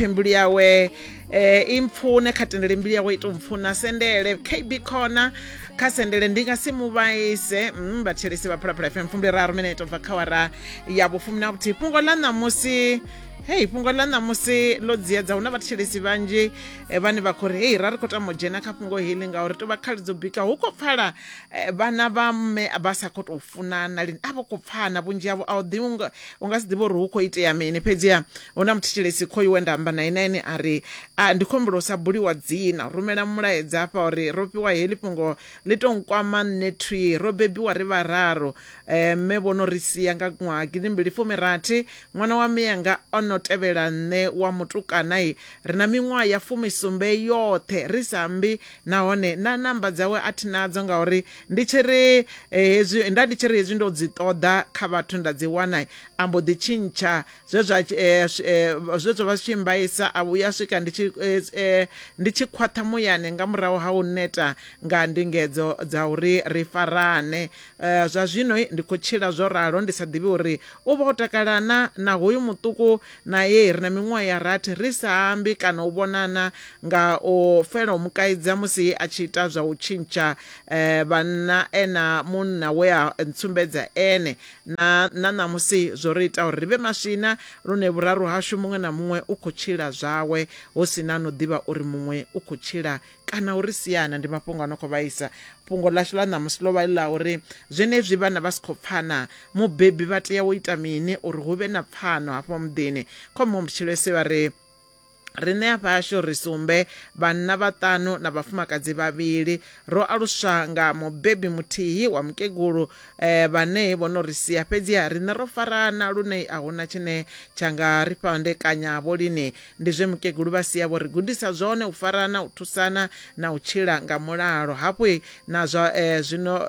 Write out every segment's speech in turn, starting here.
phe mbilu yawe eh, i mpfune kha tendele mbilu yawe i to mpfuna sendele kb khona kha sendele ndi nga si mu vhaise mm, vhathelesi vha phalaphala fm fumbi raru mineto bva kha wara ya vhufumi na vhuthihi fhungo ḽa ṋamusi hei fhungo ḽa ṋamusi ḽo dziedza hu na vhathelesi vhanzhi eh, vhane vha khou ri hei ra ri khou tama u dzhena kha fhungo heḽi ngauri to vha khali dzo bika hu khou pfala eh, vhana vha mme vha sa khou tou funana lini a vho khou pfana vhunzhi havho a u ḓivhi nga- U nga si ḓivhe uri hu khou itea mini. Fhedziha hu na muthetshelesi khoyu we nda amba nae na ene a ri, A, ndi khou humbela u sa buliwa dzina. Rumela mulaedza hafha u ri, Ro fhiwa heḽi fhungo, ḽi tou nkwama nṋe thwii. Ro bebiwa ri vhararu. Mme vho no ri sia nga ṅwaha gidimbili fumi rathi. Ṅwana wa mme anga o no tevhela nṋe wa mutukana. Ri na miṅwaha ya fumi sumbe yoṱhe ri sa ambi nahone na namba dzawe a thi nadzo ngauri ndi tshi ri eh, hezwi nda ndi tshi ri hezwi ndo dzi ṱoḓa kha vhathu nda dzi wana a mbo ḓi tshintsha zwe zwa eh, eh, zwe zwa vha zwi tshi mbaisa a vhuya swika ndi tshi ndi tshi khwaṱha muyani nga murahu ha u neta nga ndingedzo dza uri ri farane zwa zwino ndi khou tshila zwo ralo ndi sa ḓivhi uri u vha o takalana na hoyu muṱuku nae ri na miṅwaha ya rathi ri sa ambi kana u vhonana nga o fela u mu kaidza musi a tshi ita zwa u tshintsha eh, vhanna ena munna we a ntsumbedza ene na na ṋamusi zwo ri ita uri ri vhe maswina lune vhuraru hashu muṅwe na muṅwe u khou tshila zwawe hu si na no ḓivha uri muṅwe u khou tshila kana uri siana ndi mafhungo ano khou vhaisa fhungo ḽashu ḽa ṋamusi ḽo vha ḽi ḽa uri zwenezwi vhana vha si khou pfana mubebi vha tea u ita mini uri hu vhe na pfano hafho muḓini khomuhumbutshilesi vha ri riṋe afha hashu ri sumbe vhanna vhaṱanu na vhafumakadzi vhavhili ro aluswa nga mubebi muthihi wa mukegulu eh, vhane vho no ri sia fhedziha riṋe ro farana lune a huna tshine tsha nga ri fhandekanya vho lini Ndi zwe mukegulu vha sia vho ri gudisa zwone, u farana, u thusana na u tshila nga mulalo. Hafhu na zwa zwino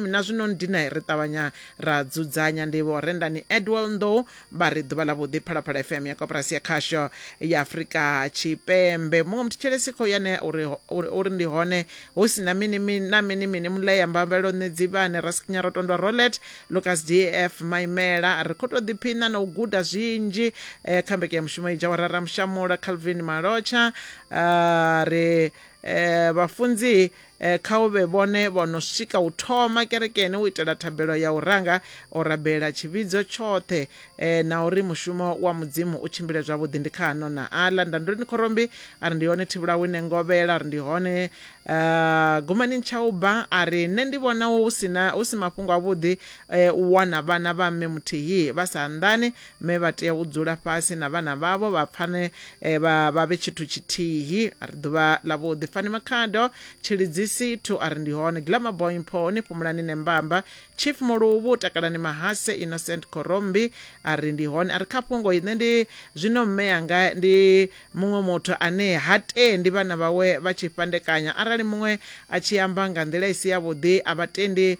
na zwino ndina ri ṱavhanya ra dzudzanya. Ndi Vho Rendani Edwell Nḓou vha ri ḓuvha ḽa vhuḓi Phalaphala FM ya koporasi ya khasho ya Afrika Tshipembe. Muṅwe muthetshelesi khou ya ne uri uri ndi hone hu si na mini mini na mini mini Mulea Mbambeloṋe Dzivhane Raskinyarotondwa Rolet Lukas DF. Maimela ri khou tou ḓiphiṋa na u guda zwinzhi eh, kha mbekanyamushumo i dzha wa Raramushamula Calvin Malotsha ah, ri eh, vhafunzi eh, kha u vhe vhone vho no swika u thoma kerekeni u itela thabelo ya u ranga o rabela tshivhidzo tshoṱhe eh, na uri mushumo wa mudzimu u tshimbile zwavhuḓi ndi kha ano na aḽa ndandulini khorombi a ri ndi hone thivhulawine ngovhela a ri ndi hone Uh, Gumani Nchauba a ri nṋe ndi vhona hu sina hu si mafhungo avhuḓi eh, u wana vhana vha mme muthihi vha sa anḓani mme vha tea u dzula fhasi na vhana vhavho vha pfane eh, vha vha vhe tshithu tshithihi a ri ḓuvha ḽa vhuḓi Fani Makhado Tshilidzisi thu a ri ndi hone Glamour Boy Mpho ni fhumulani ne mbamba Chief Muluvhu takalani mahase Innocent Korombi a ri ndi hone a ri kha fhungo ine ndi zwino mme anga ndi Muṅwe muthu ane ha tendi vhana vhawe vha tshi fhandekanya arali muṅwe a tshi amba nga nḓila i si yavhuḓi, a vha tendi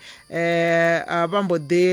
vha mbo ḓi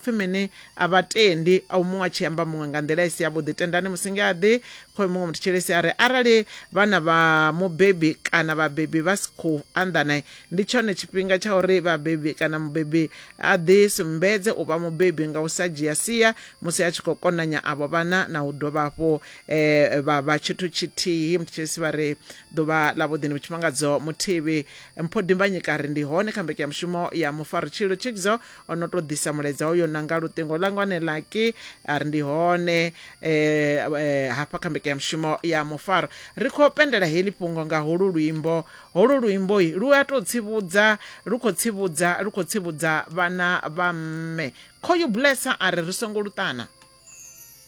pfi mini? A vha tendi au muṅwe a tshi amba muṅwe nga nḓila i si yavhuḓi. Tendani musi nge a ḓi khoe muṅwe muthu tshilisi a ri, Arali vhana vha mubebi kana vhabebi vha si khou anḓana, ndi tshone tshifhinga tsha uri vhabebi kana mubebi a ḓi sumbedze u vha mubebi nga u sa dzhia sia musi a tshi khou konanya avho vhana na u dovha hafhu eh vha vha tshithu tshithihi mthethesi vha ri ḓuvha ḽa vhuḓini vhutshimangadzo muthivhi mpho dimbanyika ri ndi hone kha mbeke ya mushumo ya mufaritshilo thikdzo o no tou ḓisa mulaedza uyo nanga luṱingo langa wane laki a ri ndi hone eh, eh hafha kha mbeke ya mushumo ya mufaro ri khou pendela heḽi fhungo nga holu luimbo holu luimbo lu a tou tsivhudza lu khou tsivhudza lu khou tsivhudza vhana vha mme khoyu blessa a ri ri songo luṱana